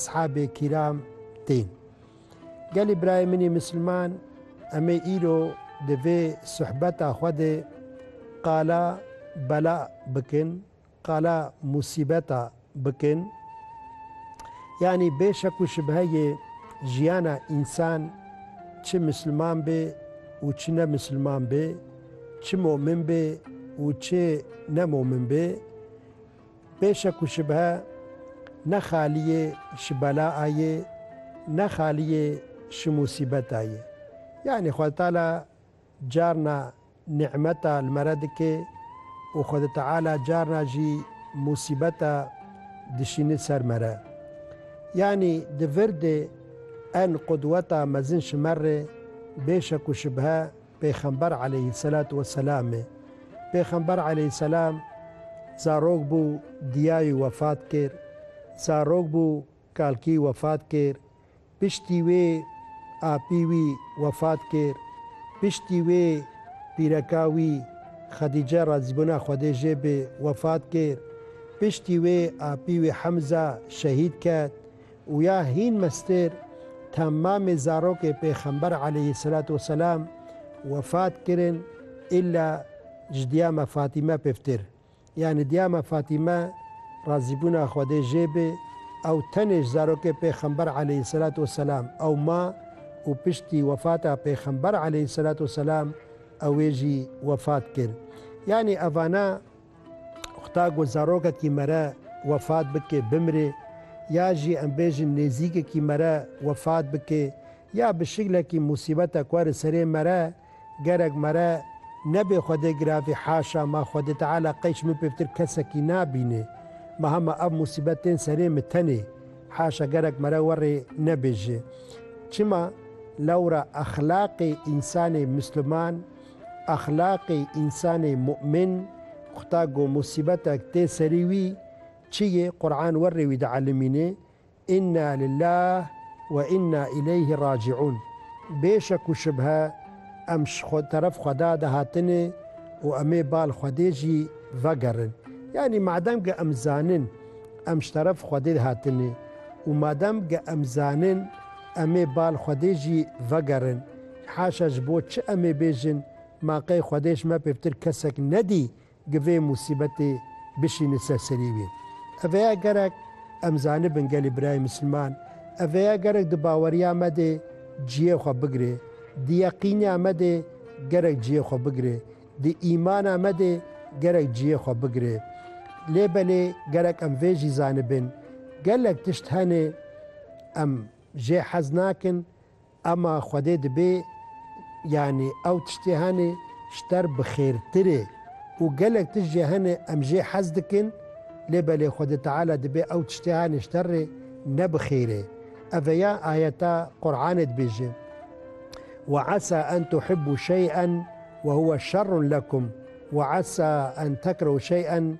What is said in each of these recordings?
Sahebê kîram tên. Gelê birayê min ê misilman em ê îro di vê suhbeta xwe de qala bela bikin, qala musîbeta bikin. Yanî bê şek û şibheyê jiyana însan çi misilman bê û çi ne misilman bê, çi momin bê û çi ne momin bê, Pêşe ku şibhe ne xaliyê ji bela a yê, ne xaliyê ji musîbet a yê. Yanî Xwedê Teala carna nî'meta li me re dike û Xwedê Teala carna jî musîbeta dişîne ser me re. Yanî di vir de en qudweta mezin ji me re bêşe ku şibhe Pêxember aleyhîsselatu wesselamê. Pêxember aleyhîsselam zarok bû diyayî wefat kir. Zarok bû kalkî wefat kir. Piştî wê apî wî wefat kir. Piştî wê pîreka wî Xedîce razîbûna Xwedê jê bê wefat kir. Piştî wê apî wê Hemza şehîd ket. Û ya hîn mestêr ta mamê zarokê pêxember aleyhî selat û selam wefat kirin îlla ji diyama Fatîme piftir. Yanî diyama Fatîme razîbûna Xwedê jê be ew tenê ji zarokê pêxember aleyhî selat û selam ew ma û piştî wefata pêxember aleyhî selat û selam ewê jî wefat kir. Yanî evana. Xuda ku zarokekî me re wefat bike, bimire, ya jî em bêjin nêzîkekî me re wefat bike ya bi şiklekî musîbetek were serê me re, gerek me re nebê Xwedê giravî haşa ma Xwedê Teala qey ji min pêvtir kesekî nabîne. Ma hema ev musîbet tên serê min tenê. Haşa gerek me re we rê nebêje. Çima? Lewra exlaqê însanê misliman, Exlaqê însanê mu'min, Xuda ku musîbetek tê serî wî, çi yê, Quran werrê wî dielimîne, Inna lillah we inna îleyhî racî'ûn, Bê şek û şibhe em ji teref Xweda de hatine û em ê bal Xwedê jî vegerin. Yanî madem ke em zanin em ji teref Xwedê hatine û madem ke em zanin em ê bal Xwedê jî vegerin, Haşa ji bo çi em ê bêjin, ma qey Xwedê ji me pêvtir kesek nedî gi vê musîbetê bişîne ser serî wî. Ev heye gerek em zanibin gelê birayê misilman, ev heye gerek di baweriya me de ciyê xwe bigire, di yeqîniya me de gerek ciyê xwe bigire, di îmana me de gerek ciyê xwe bigire. Lê belê gerek em vê jî zanibin, gelek tişt hene em jê hez nakin, Ema Xwedê dibê yanî ew tiştê hene ji ter bi xêrtir e û gelek tişt jê hene em jê hez dikin lê belê Xwedê Teala dibê ew tiştê hene ji ter rê ne bi xêr e. Ev e ya ayeta Quranê dibêje, Ve esa en tuhibbû şey'en we huwe şerrun lekum we esa en tekrehu şey'en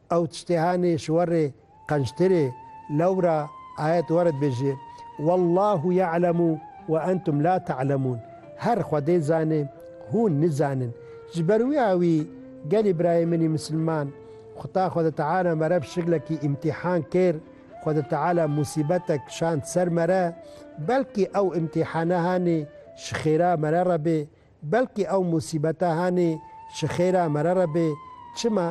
Ew tiştê hanê ji werê qençtir ê. Lewra ayet were dibêje, Wallahu ya'lemu ve entum la ta'lemun, Her Xwedê zane, hûn nizanin. Ji ber wî a wî, gelê birayê min ê misilman, Xuda Xwede Teala me re bi şiklekî îmtîhan kir, Xwede Teala musîbetek kişand ser me re, belkî ew îmtîhane hanê ji xêra me re re bê, Belkî ew musîbeta hanê ji xêra me re re bê. Çima?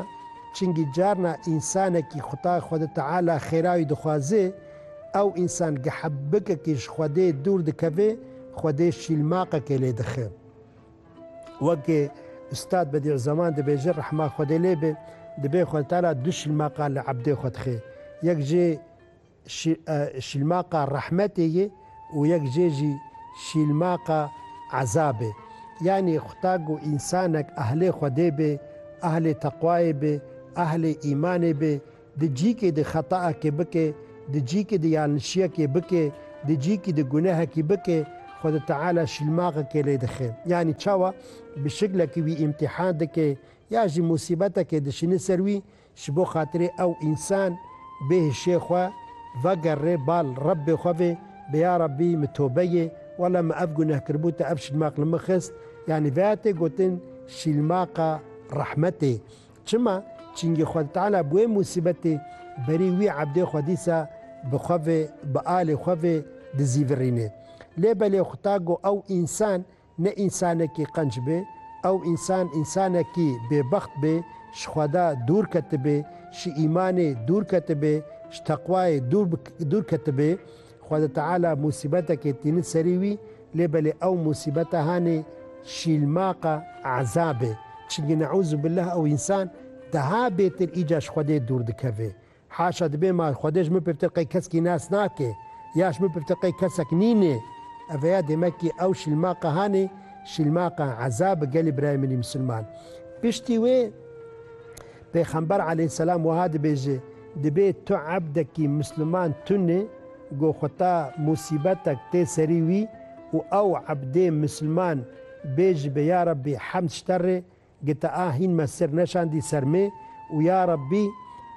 Çingî carna însanekî Xwutay Xwedi Teala xêra wî dixwazê, ew însan gehebikekî ji Xwedê dûr dikevê, Xwedê şîlmaqekê lê dixe. Wekê Ustad Bedî'u Zaman dibêje rehma Xwedê lê be, dibê Xwedi Teala du şîlmaqa li ebdê xwe dixe. Yek jê. Şîlmaqa rehmetê ye û yek jê jî şîlmaqa ezabê. Yanî xuda ku însanek ehlê Xwedê bê, ehlê teqwayê bê, ehlê îmanê bê, di cîkê de xetaekê bike, di cîkê de yanlişiyekê bike, di cîkê de gunehekî bike, Xwedê Teala şîlmaxekê lê dixe. Yanî çawa? Bi şiklekî wî îmtîhan dike ya jî musîbetekê dişîne ser wî Ji bo xatirê ew însan bê hişê xwe vegerrê bal Rebbê xwe vê bê ya Rebbî min tobe yê wela min ev guneh kiribû te ev şilmaq li min xist yanî veya tê gotin şîlmaqa rehmetê çima çingî Xwedî Teala bi wê musîbetê berî wî ebdê xwe dîsa bi xwe vê bi alê xwe vê dizîvirînê lê belê xuta go ew însan Ne însanekî qenc bê, ew însan însanekî bêbext bê, ji Xweda dûr ketibê, ji îmanê dûr ketibê, ji teqwayê dûr dûr ketibê. Xweda Teala musîbetekê tînin serî wî, lê belê ew musîbeta hanê şîlmaqa ezabê. Çimkî neûzûbillah ew însan daha bêtir îca ji Xwedê dûr dikeve. Haşa dibê ma Xwedê ji min pirtir qey keskî nas nake, ya ji min pirtir qey kesek nînê. Eveya demekî ew şilmaqa hanê, şilmaqa eza bi gelê birayê min ê misilman. Piştî wê Pêxember aleyhisselam wiha dibêje, Dibê tu ebdekî misilman tune ku xweta musîbetek tê serî wî û ew ebdê misilman bêjibe, Ya Rabbî hemd ji te re, GTA hîn me sir neşandî ser me û ya Rabbî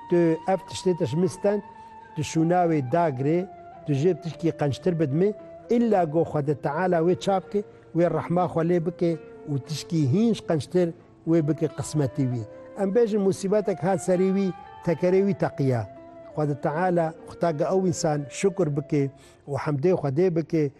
tu ev tiştê te ji min stend, tu şûna wê da girê, tu jê ptişkî qençtir bidimê, îlla go Xwedê Teala wê ça bike, wê rehma xwe lê bike û tişkî hîn ji qençtir wê bike qismetî wî. Em bêjin musîbetek hat serî wî, tekerê wî teqiya. Xwedê Teala, xuda ge ew însan şukr bike û hemdê Xwedê bike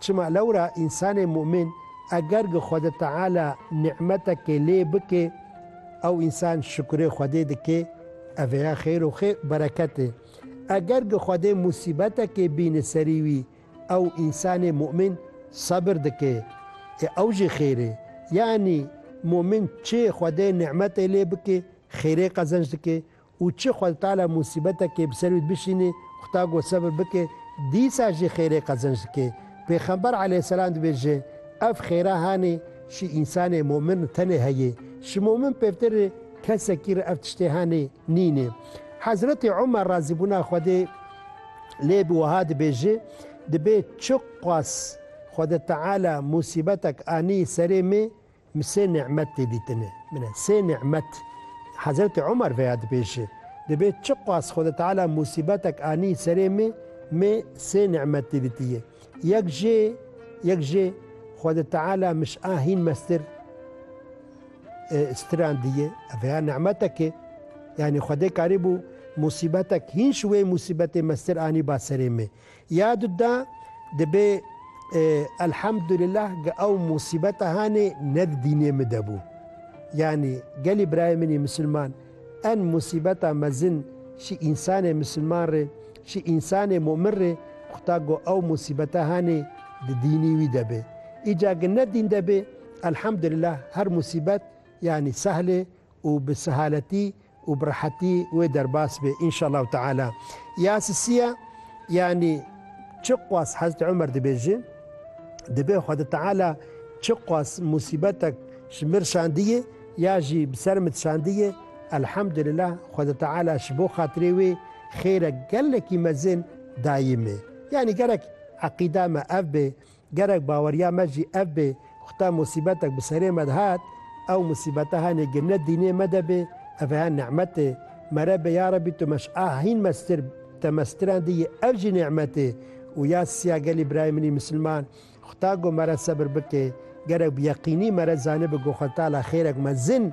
Çima lewra însanê mu'min eger gi Xwede Teala nî'metekê lê bike, ew însan şukurê Xwedê dike, ev ê ya xêr û xê bereket e. Eger gi Xwedê musîbetekê bîne serî wî, ew însanê mu'min sebir dike, ê ew jî xêr e. Yanî mu'min çê Xwedê nî'metê lê bike, xêrê qezenc dike û çi xwe li tala musîbetekê bi ser wî dibişînî, Xuda got sebir bike, dîsa jî xêrê qezenc dike. Pêxember aleyhisselam dibêje, Ev xêra hanê şî însanê momin re tenê heye. Şî momin pevtir re kesekî re ev tiştê hanê nîne. Hezretê Omer razîbûna Xwedê lê bi wiha dibêje, Dibê çiqas Xwede Teala musîbetek anî serê me, Min sê nimet tê dîtine. Min e sê nimet. Hezretê Omer veya dibêje, Dibê çiqas Xweda Teala musîbetek anî serê me, me sê nimet tê dîtiye. Yek jê, yek jê Xweda Teala min ji a hîn mestir stirandiye. Ev veya nimetek e. Yanî Xwedê karîbû musîbetek hîn ji wê musîbetê mestir anîba serê me. Ya du da dibê Elhamdulillah ge ew musîbeta hanê ne di dînê min de bû. Yanî gelî birayê min ê misilman en musîbeta mezin şî însanê misilman rê, şî însanê mumin rê ku ta ku ew musîbeta hanê di dînî wî de bê. Îca ge ne dîn de bê Elhamdulillah her musîbet yanî sehlê û bi sehaletî û bi rehetî wê derbas bê înşallahu teala. Ya sisiya yanî çi qas Hezreti Omer dibêje, dibê Xweda Teala çi qas musîbetek ji mir şandiyê ya jî bi ser min şandiyê, Elhamdulillah Xweda Teala ji bo xatirê wê xêrek gelekî mezin dayî me. Yanî gerek eqîda me ev bê Gerek baweriya me jî ev bê ku ta musîbetek bi serê me de hat, ew musîbete henê gê ne dînê me de bê, ev ê ni'metê mere bê, ya Rebî tu meş a hîn mestir te mestirandiyî ev jî ni'metê û ya siya gelî birayê minî misilman xuda go mere sebir bikê, gerek bi yeqînî mere zanibi go xwe tala xêrek mezin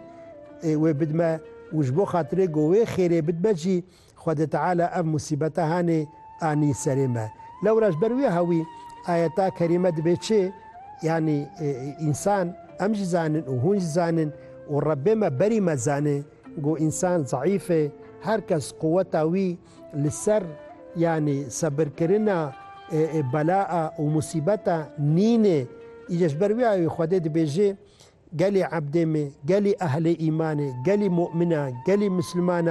ê wê bidme û ji bo xatirê go wê xêrê bidme jî Xwedê Teala ev musîbeta hanê anî serê me. Lewra ji ber wiha wî ayeta kerîme dibe çi? Yanî însan, em jî zanin û hûn jî zanin û Rebbê me berî me zane ku însan zeîf e, her kes quweta wî li ser yanî sebirkirina bela û musîbeta nîn e. Îca ji ber wiha wî Xwedê dibêje, Gelê ebdê me, gelê ehlê îmanê, gelê mu'mina, gelê misilmana,